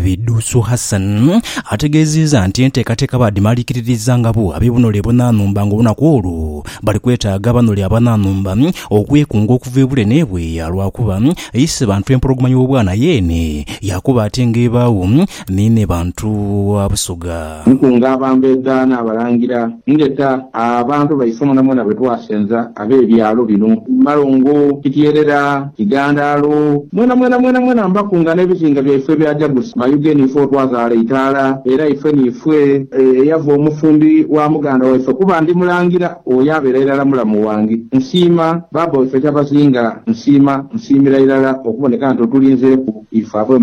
Bidusu Hassan ategeeziiza nti enteekateeka baadhimaliikiririza nga bo ab'ebunole ebunanhumba nga olunaku olwo bali kwetaaga abanole abananhumba okwekunga okuva ebule n'ebweya lwakuba eise bantu empologoma y'obwana yeene yakuba ate nga ebaagho ni ne bantu ba Busoga. Nkunga abantu egaana, abalangira, ndeta abantu baife mwenamwena be twasenza ab'ebyalo bino, Malongo, Kityerera, Kigandaalo, mwenamwena mwenamwena mbakunga n'ebizinga byaife ebya Jagusi, Mayuge niife otwazaala eitaala era ife niife eyava omufumbi wa muganda waife kuba ndi mulangira oyo abeera irala mulamu wange. Nsiima baaba waife Kyabazinga, nsiima, nsiimira irala okuboneka nti otulinzeeku ife ab'e.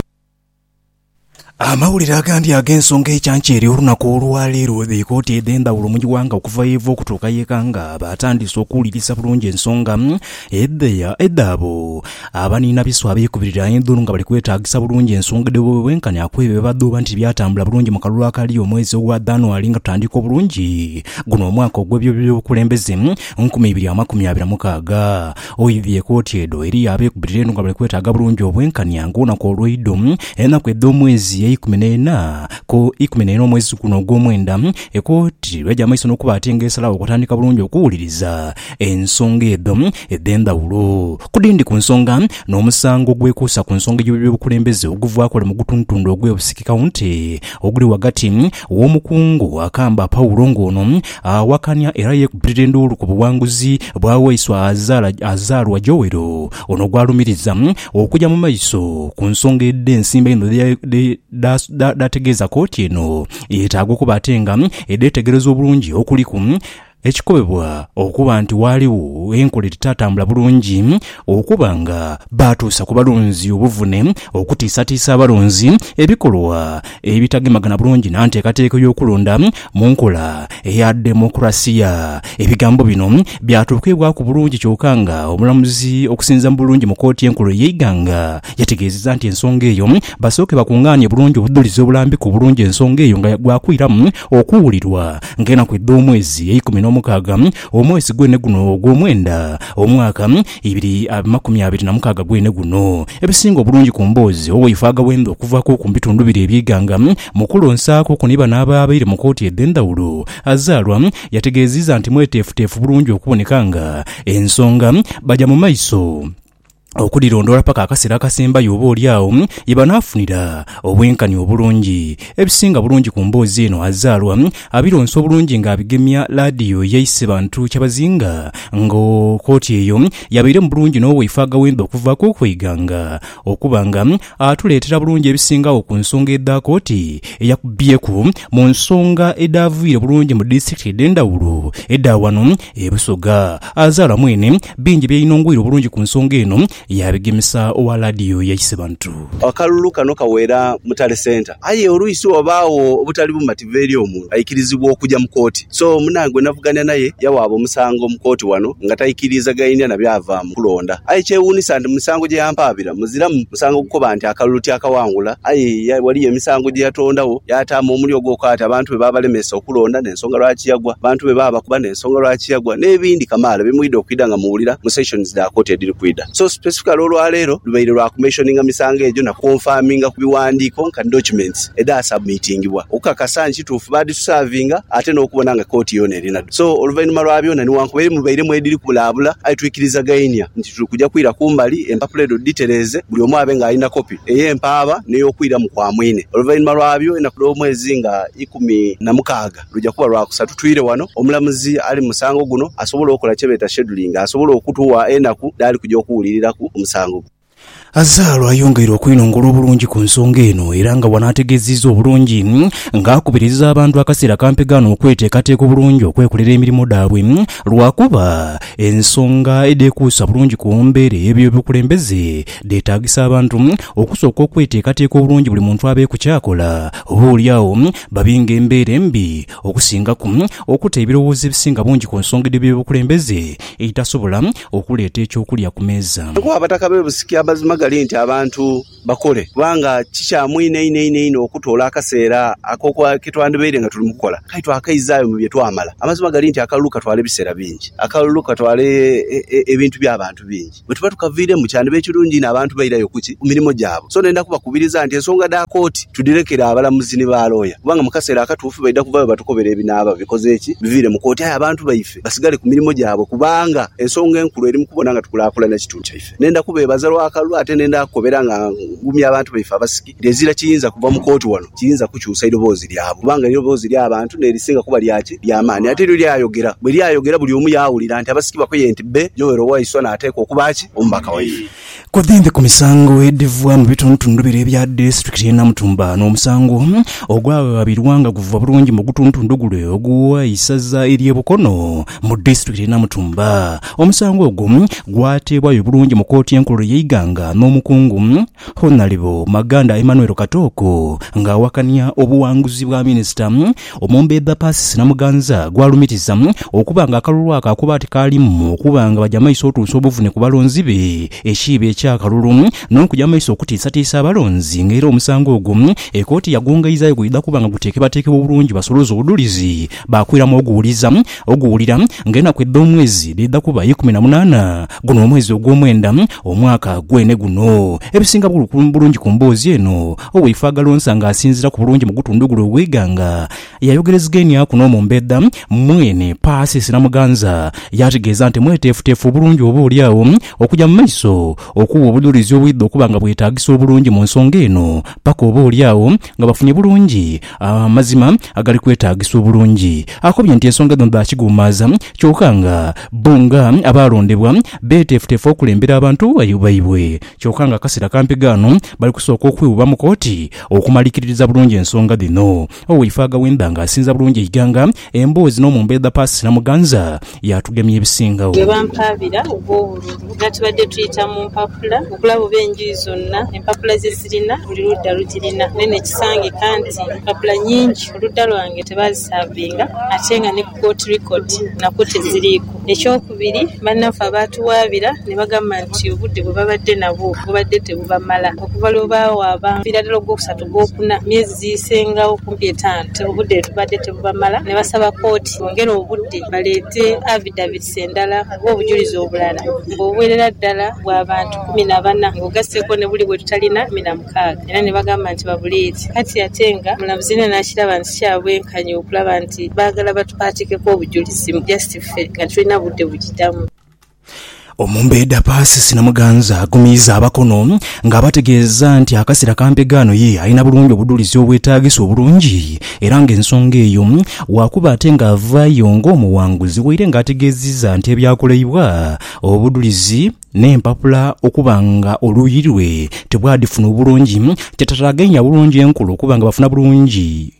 Amawulire agandi ag'ensonga ecanca eri olunaku olwa leero bwebeeka oti edhendhawulo mu ighanga okuva yeeva okutuuka yeeka nga batandiise okuwulirisa bulungi ensonga edhabo. Abaniina biswa abeekubirira endhulu nga bali kwetaagisa bulungi ensonga edh'obubi bwenkanya ku ebyo byebadhooba nti byatambula bulungi mu kalulu akali omwezi ogwa Dhanuary nga tutandika obulungi guno omwaka ogw'ebyobyobukulembeze nkumi ibiri amakumi abiri mukaaga. Oidhie koti edho eriyo abeekubirira eno nga bali kwetaaga bulungi obwenkanya ng'olunaku olweidho, enaku edh'omwezi eikumi n'ena ku ikumi n'ena omwezi guno ogw'omwenda, ekooti lw'eja mu maiso n'okuba ate nga esalawo okutandika bulungi okuwuliriza ensonga edho edh'endhawulo ku dhindi ku nsonga n'omusango ogwekuusa ku nsonga y'obubi bw'obukulembeze oguvaaku wale mu gutundutundu ogw'e Busiki County oguli ghagati W'omukungu akamba Paulo ng'ono awakania era yeekubirira enduulu ku buwanguzi bwa waiswa azaalwa Joel ono gw'alumiriza okuja mu maiso ku nsonga edh'ensimbi einho dh'ategeeza kooti eno yeetaaga okuba ate nga edheetegereza obulungi okuliku Ekikobebwa okuba nti waaligho enkola edhitaatambula bulungi okuba nga baatuusa ku balonzi obuvune okutiisatiisa abalonzi, ebikolwa ebitagemagana bulungi na nteekateeka y'okulonda mu nkola eya demokulaasiya. Ebigambo bino byatuukibwaku bulungi kyoka nga omulamuzi okusinziira mu bulungi mu kooti enkulu ey'eighanga yategeezezza nti ensonga eyo basooke bakungaanie bulungi obudhulizi obulambiku obulungi ensonga eyo nga gwakwiramu okuwulirwa Ng'enaku edh'omwezi eikumi n'omukaaga, omwezi gwene guno ogw'omwenda, omwaka, ibiri amakumi abiri na mukaaga gwene guno. Ebisinga obulungi ku mboozi owaife agawenza okuvaaku ku bitundu biri eby'eighanga mu kulonsaaku okwo ni bano abaabaire mu kooti edh'endhawulo. Azalwa yategeeziiza nti mweteefuteefu bulungi okuboneka nga ensonga baja mu maiso. okudhilondoola paka akaseera akasembayo oba oli agho ye banaafunira obwenkanya obulungi. Ebisinga bulungi ku mboozi eno azaalwa abironsa obulungi ng'abigemya laadiyo ye Isebantu Kyabazinga nga koti eyo yabaire mu bulungi n'owaife Agawembe okuvaako okweghanga okuba nga atuleetera bulungi ebisingagho ku nsonga edha koti eyakubyeku mu nsonga edhaaviire bulungi mu disitulikiti edh'endhawulo edha wano E Busoga azaalwa mwene, bingi byeyinongoire obulungi ku nsonga eno yaabigemesa owa laadiyo ya Isebantu. Akalulu kano kaweera Mutale Centre aye oluisi wabaagho obutali bumativu eri omuntu aikirizibwa okuja mu kooti. So munange gwe navugania naye yawaaba omusango mu kooti wano nga taikiriizagainia na byava mu kulonda aye kyewuunisa nti mu misango gye yampaabira muziramu. Musango gukoba nti akalulu tyakawangula, aye ghaliyo emisango gye yatondagho yaatamu omuli ogw'okwata abantu be baabalemesa okulonda n'ensonga lwaki yagwa, abantu be baabakuba n'ensonga lwaki yagwa, n'ebindi kamaala bye mwidha okwidha nga muwulira mu sessions dha kooti edhiri kwidha. So specifically olwa leero lubaire lwa ku mentioninga misango egyo na ku confirminga ku biwandiiko nka documents edha submitingibwa okukakasa nti kituufu baadhitusaavinga ate n'okubona nga kooti yoona erinadho. So oluvainhuma lwa byoona, niwankubere mubairemu edhiri kubulaabula aye twikirizagainia nti. Tuli kuja kwira kumbali empapula edho dhitereeze, buli omu abe nga alina kopi ey'empaaba n'ey'okwiramu kwa mwine. Oluvainhuma lwabyo, enaku dh'omwezi nga ikumi na mukaaga luja kuba lwa kusatu twire wano omulamuzi ali mu musango guno asobole okola kye beeta scheduling asobole okutugha enaku dhaali kuja okuwuliriraku omusango guno. Azaalo ayongeire okwinongola obulungi ku nsonga eno era nga wano ategeziiza obulungi nga akubiriza abantu akaseera kampegaano okweteekateeka obulungi okwekolera emirimo dhaabwe lwakuba ensonga edhekuusa bulungi ku mbeera ey'ebyobukulembeze dheetaagisa abantu okusooka okweteekateeka obulungi buli muntu abeeku ky'akola oba olyagho babi nga embeera embi okusingaku okuta ebirowoozo ebisinga bungi ku nsonga edh'ebyobukulembeze edhitasobola okuleeta eky'okulya ku meeza. Ku Abataka b'e Busiki amazima gali nti abantu bakole kubanga kikyamu inho inho inho inho okutoola akaseera ako ke twandibaire nga tuli mu kukola aye twakaizaayo mu bye twamala. Amazima gali nti akalulu katwala ebiseera bingi, akalulu katwala ebintu bya bantu bingi. Bwe tuba tukaviiremu kyandiba ekirungi inho abantu bairayo ku ki? Ku mirimo gyabwe. So ndenda kubakubiriza nti ensonga dha kooti tudhirekere abalamuzi ni ba looya kubanga mu kaseera akatuufu baidha kuvayo batukobere ebinaaba bikoze ki? Biviire mu kooti. Aye abantu baife. basigale ku mirimo gyabwe kubanga ensonga enkulu eri mu kubona nga tukulaakulanya ekitundu kyaife. Nenda kubeebaza lwa kalulu ate nenda kukobera nga ngumya abantu baife Abasiki nti ezira kiyinza kuva mu kooti wano kiyinza kukyusa idoboozi lyabwe kubanga eidoboozi ly'abantu n'erisinga kuba lya ki? Lya maani. Ate lyo lyayogera. Bwe lyayogera buli omu yaawulira nti Abasiki bakoye nti bbe Joel Waiswa n'ateekwa okuba ki? Omubaka waife. Ku dhimpi ku misango edhiva mu bitundutundu bire ebya disiturikiti y'e Namutumba, n'omusango ogwaghabirwa nga guva bulungi mu gutuntundu gule ogwa isaza ery'e Bukono mu disiturikiti y'e Namutumba. Omusango ogwo gwateebwayo bulungi mu kooti enkulu ey'eighanga n'omukungu Honalebo Maganda Emmanuel Katooko ng'awakania obuwanguzi bwa minisita Omumbedha Persis Namuganza gw'alumiriza okuba nga akalulu ako akuba tikaalimu okuba nga baja maiso otuusa obuvune ku balonzi be ekiibo eky'akalulu n'okuja maiso okutiisatiisa abalonzi nga era omusango ogwo ekooti yagwongaizaayo gwidha kuba nga guteekebwateekebwa obulungi basoloze obudhulizi baakwiramu oguwuliza oguwulira nga enaku edh'omwezi dhidha kuba ikumi na munaana guno omwezi ogw'omwenda omwaka gwene guno. Ebisinga bulungi ku mboozi eno Oweifwe Agalonsa nga asinzira ku bulungi mu gutundu guno ogweighanga yayogerezegeniaku n'omumbeedha mwene Persis Namuganza yaategeeza nti mweteefuteefu obulungi oba oli agho okuja mu maiso okuwa obujurizi obwidha okuba nga bwetaagisa obulungi mu nsonga eno paka oba oli agho nga bafunye bulungi amazima agali kwetaagisa obulungi. Akobye nti ensonga dhino dha kiguumaaza kyoka nga bbo nga abaalondebwa beeteefuteefu okulembera abantu baibwe kyoka nga akaseera kampi ghano Bali kusooka okwewubamuku oti okumalikiririza bulungi ensonga dhino. Owaife Agawemba nga asinza bulungi eighanga, emboozi n'omumbo edha Paasi Namuganza, yaatugemya ebisingagho. Ghe bampaabira ogw'obululu nga tubadde tuyita mu mpapula okulaba oba enjuyi zonna empapula ze zirina buli ludda lugirina. Naye ne kisangika nti empapula nyingi oludda lwange tebaazisaavinga ate nga ni. Port Record nakwo teziriiku. Ekyokubiri, bannaffe abaatuwaabira ne bagamba nti obudde bwe babadde nabwo bubadde tebubamala. Okuva lwe baawaaba omupiira ddala ogwokusatu, ogwokuna, emyezi giisengagho kumpi etaanu nti obudde tebubadde tebubamala ne basaba kkooti bongere obudde baleete avidavits endala oba obujulizi obulala ng'obuwerera ddala bwa bantu kumi na bana ng'ogasseeko ne buli bwe tutalina kumi na mukaaga. kaaga, era ni bagamba nti babuleeti. Kati ate nga omulamuzi yena nakiraba nti kya bwenkanya okulaba nti baagala batupaatikeku obujulizi mbu just ffe nga titulina budde bujidamu. Omumbeeda Persis Namuganza agumiiza abakono nga abategeeza nti akasera ka mpegaano ye alina bulungi obudulizi obwetaagisa obulungi era nga ensonga eyo wakuba ate nga avaayo nga omuwanguzi waire nga ategeziza nti ebyakoleibwa obudulizi N'empapula okuba nga oluuyi lwe tibwadhifuna obulungi, kyatataaganya bulungi enkula okuba nga bafuna bulungi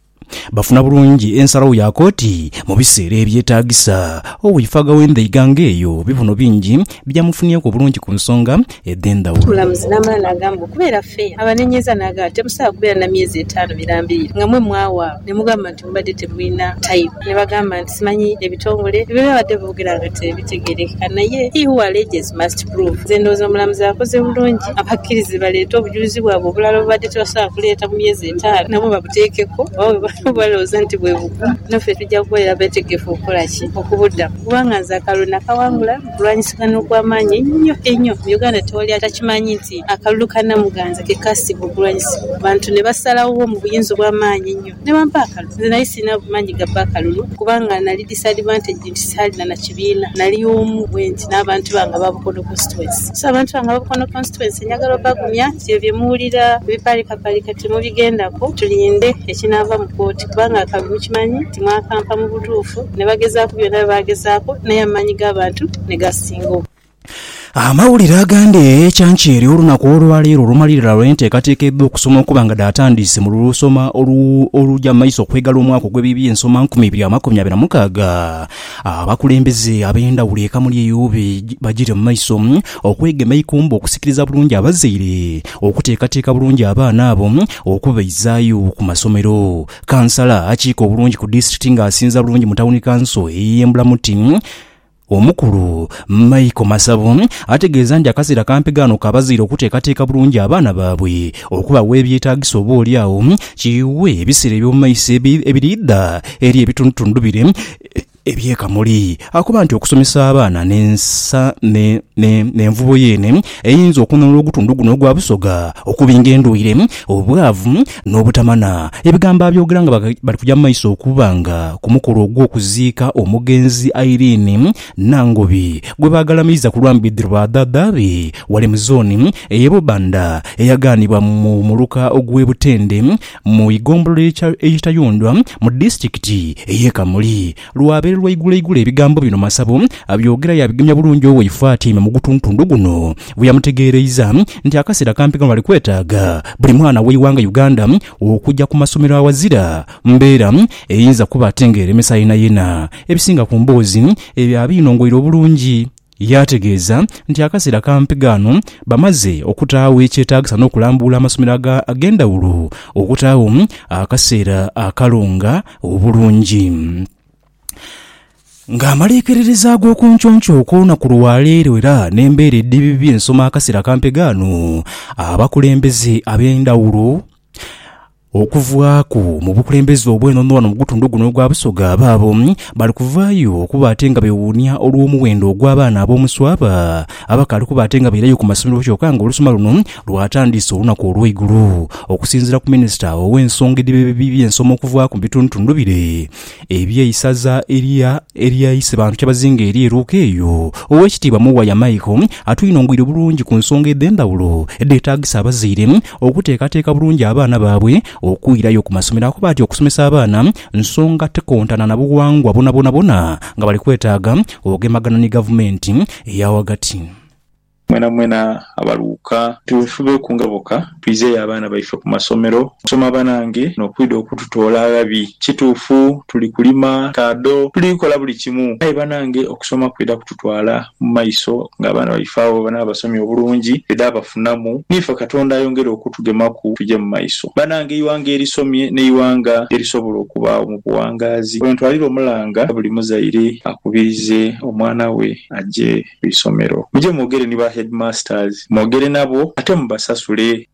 bafuna bulungi ensalagho ya kooti mu biseera ebyetaagisa. Oweifaaga w'endhaiga nga eyo bibuno bingi byamufunyeku obulungi ku nsonga edh'endhawulo. Omulamuzi n'amala n'agamba mbu, Kubeera ffe abanenyeza n'agamba nti temusaagha kubeera na myezi etaanu mirambirire nga mwe mwawaawo, ne mugamba nti. tibubadde tibwina time ni bagamba nti simanyi ebitongole bye babadde boogera nga tibitegeerekeka naye he who alleges must prove. Nze ndowooza omulamuzi akoze bulungi abakkirize baleete obujulizi bwabwe obulala obubadde tebasobola kuleeta mu myezi etaanu nabwo babuteekeku oba bwe baba balowooza nti bwe bugumu naffe tujja kubeera beetegefu okukola ki? okubuddamu kubanga nze akalulu nakawangula mu kulwanyisigana okw'amaanyi einho einho mu Uganda tewali atakimanyi nti akalulu ka Namuganza ke kaasinga okulwanyisibwa abantu ne basalagho mu buyinza obw'amaanyi einho. Ne bampa akalulu. Nze nali silina maanyi ga bba kalulu kubanga nali disadvantaged nti saalina na kibiina. Nali omu bwenti n'abantu bange aba Bukono Constituency. So abantu bange aba Bukono Constituency njagala obagumya nti ebyo bye muwulira ebipaalikapaalika timubigendaku, tulinde ekinaava mu kooti kubanga akalulu kimanyi nti mwakampa mu butuufu ne bagezaaku byonna bye baagezaaku naye amaanyi g'abantu ne gasinga. Amawulire agandi ekyankyere olunaku olwaleero lumalirira lwenteekateeka edh'okusoma okuba nga dhaatandiise mu lusoma oluja maiso okwegala omwaka ogw'eby'ensoma nkumi ibiri amakumi abiri na mukaaga. Abakulembeze ab'endhawulo e Kamuli eyo bajire mu maiso okwegema eikumbo okusikiriza bulungi abazaire okuteekateeka bulungi abaana abo okubaizaayo ku masomero. Kansala akiika obulungi ku disitulikiti ng'asinza bulungi mu tawuni kanso ey'e Mbulamuti, Omukulu, Michael Masabo, ategeeza nti akaseera kampi ghaano ka bazaire okuteekateeka bulungi abaana baabwe okubagha ebyetaagisa oba oli agho kiiwe ebiseera eby'omu maiso ebiriidha eri ebitundutundu bire eby'e Kamuli. Akoba nti okusomesa abaana n'envubo yeene eyinza okununula ogutundu guno ogwa Busoga okubinga endwaire, obwavu, n'obutamanha ebigambo abyogera nga bali kuja mu maiso okuba nga ku mukolo ogw'okuziika omugenzi Irene Nangobi gwe baagalamiiza ku lwa mbidhi lwa dhaadha be ghale mu zooni ey'e Bubanda eyagaanibwa mu muluka ogw'e Butende mu igombolola ey'e Kitayondwa mu disitulikiti ey'e Kamuli. Lwabaire lwaiguloigulo ebigambo bino Masabo abyogera yaabigemya bulungi owaife atyaime mu gutuntundu guno bwe yamutegeereiza nti akaseera kampi kano bali kwetaaga buli mwana w'eighanga Uganda okugya ku masomero aghazira mbeera eyinza kuba ate ng'eremesa yenayena ebisinga ku mboozi ebyo abinongoire obulungi Yaategeeza nti akaseera kampi ghano bamaze okutaagho ekyetaagisa n'okulambuula amasomero ag'endhawulo okutaagho akaseera akalonga obulungi. Ng'amaliikiririza ag'okunconco okw'olunaku lwa leero era n'embeera edhibibye ensoma akaseera kampi ghano, abakulembeze ab'endhawulo, Okuvaaku mu bukulembeze obw'enono ghano mu gutundu guno ogwa Busoga abaabo bali kuvaayo okuba ate nga bewuunia olw'omuwendo ogw'abaana ab'omuswaba abakaali kuba ate nga bairayo ku masomero kyoka nga olusoma luno lwatandiise olunaku olw'eigulo. Okusinziira ku minisita ow'ensonga edh'eby'ensoma okuvaaku mu bitundutundu bire, Eby'eisaza elya elya Isebantu Kyabazinga eri e Luuka eyo, Oweekitiibwa Muwaya Michael atwinhongwire bulungi ku nsonga edh'endhawulo edheetaagisa abazaire okuteekateeka bulungi abaana baabwe okwirayo ku masomero akuba ati okusomesa abaana nsonga tikontana na bughangwa bwonabwonabwona nga bali kwetaaga ogemagana ni gavumenti eya ghagati. Mwenamwena abaluuka. Tubefubeku nga boka. Twizeyo abaana baife ku masomero okusoma banange nokwidha okututoola aghabi. Kituufu tuli kulima taado, tuli kola buli kimu aye banange okusoma kwidha kututwala mu maiso nga abaana baife agho bwebanaba basomye obulungi twidha bafunamu niife Katonda ayongere okutugemaku tuje mu maiso. Banange eighanga erisomye n'eighanga erisobola okubaagho mu buwangaazi. Wentwalira omulanga buli muzaire akubirize omwana we aje. ku isomero. Muje mwogere ni ba headmasters, mwogere nabo ate mubasasule.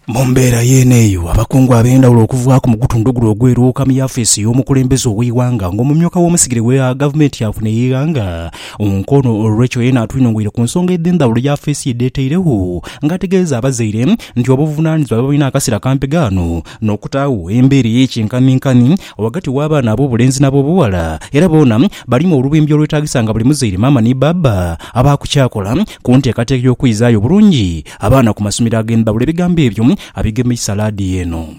Mu mbeera yeene eyo, abakungu ab'endhawulo okuvaaku mu gutundu guno ogw'eruuka mu yafeesi y'omukulembeze ow'eighanga nga omumyuka w'omusigire wa gavumenti yaafuna eighanga mu nkono olw'ekyo yeena atwinhongweire ku nsonga edh'endhawulo yafeesi ye dheetairegho nga ategeeza abazaire nti obuvunaanizibwa bwebalina akaseera kampegaano n'okutaagho embeera ey'ekinkaminkamin ghagati w'abaana ab'obulenzi n'ab'obughala, era boona balimu olubimbi olwetaagisa nga buli muzaire, maama ni bbaabba abaaku ky'akola ku nteekateeka y'okwizaayo obulungi abaana ku masomero ag'endhawulo. Ebigambo ebyo abigemeisa laadiyo eno.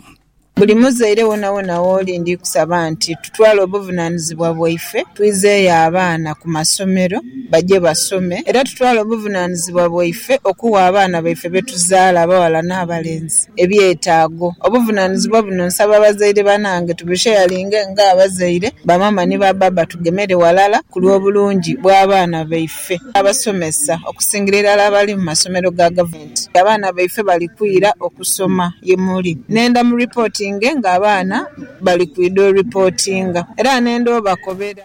Buli muzaire wonawona w'oli ndi kusaba nti tutwale obuvunaanizibwa bwaife twizeeyo abaana ku masomero baje basome era tutwale obuvunaanizibwa bwaife okugha abaana baife be tuzaala abaghala n'abalenzi ebyetaago. Obuvunanizibwa buno nsaba bazaire banange tubusheyalinge nga abazaire, bamama ni ba baba tugemere walala ku lw'obulungi bw'abaana baife. Abasomesa okusingira irala abali mu masomero ga gavumenti abaana baife bali kwira okusoma ye muli. Nenda mu ripotinge nga abaana bali kwidha oripotinga era nenda obakobera.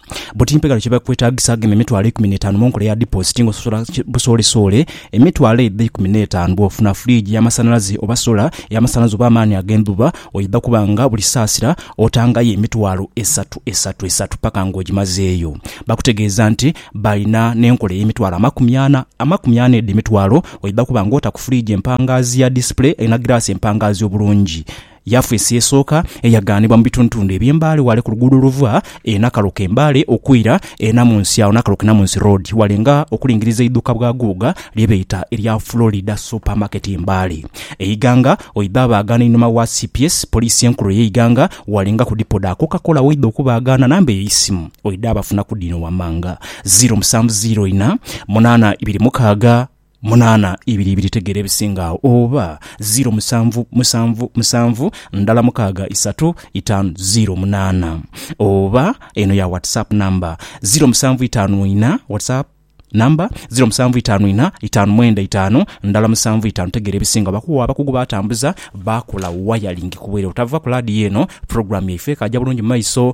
Buti mpegho ki bwekwetaagisa agema emitwalo eikumi n'etaanu mu nkola eya dipoositi ng'ososola busoolesoole emitwalo eidha eikumi n'etaanu bw'ofuna furiigi y'amasanhalaze oba sola ey'amasanhalaze oba amaani ag'endhuba oidha kuba nga buli saasira otangayo emitwalo esatu esatu esatu paka ng'ogimazeeyo. Bakutegeeza nti balina n'enkola ey'emitwalo amakumi ana amakumi ana edho emitwalo oidha kuba ng'ota ku furiigi empangaazi ya disipule erina giraasi empangaazi obulungi. Yafeesi esooka eyagaanibwa mu bitundutundu eby'e Mbale ghale ku luguudo oluva e Nakaroka e Mbale okwira e Namunsi agho Nakaroke-Namunsi Road ghale nga okulingiriza eidhuuka bwa Guuga lye beeta erya Florida Super Market e Mbale e Iganga oidha abaagana einhuma wa cps, Poliisi Enkulu eye Iganga, ghale nga ku Dipo dha Coca-Cola woidha okubaagana. Namba ey'eisimu oidha abafuna ku dhino wammanga, ziro musanvu ziro ina, munaana ibiri mukaaga. Munaana ibiri ibiri tegeera ebisinga agho oba ziro musanvu musanvu musanvu ndala mukaaga isatu itaanu ziro munaana oba eno ya WhatsApp number ziro musanvu itaanu ina WhatsApp number ziro musanvu itaanu ina itaanu mwenda itaanu ndala musanvu itaanu tegeera ebisinga bakuwa abakugu batambuza bakola wayalingi kubwire otava ku laadiyo eno program yaife ekaaja bulungi mumaiso.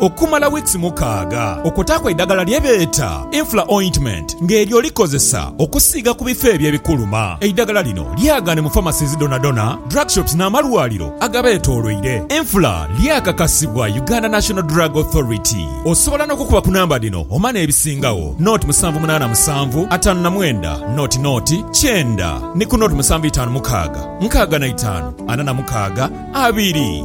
okumala wiikisi mukaaga okwotaaku eidagala lye beeta Infla Ointment nga eryo olikozesa okusiiga ku bifo ebyo ebikuluma. Eidagala lino lyagaane mu pharmacies dhonadhona, drug shops n'amalwaliro agabeetooloire. Infla lyakakasibwa Uganda National Drug Authority. Osobola n'okukuba ku namba dhino omane ebisingagho, naught musanvu munaana musanvu, ataanu na mwenda, naught naught, kyenda ni ku naught musanvu itaanu mukaaga, nkaaga na itaanu, ana na mukaaga, abiri.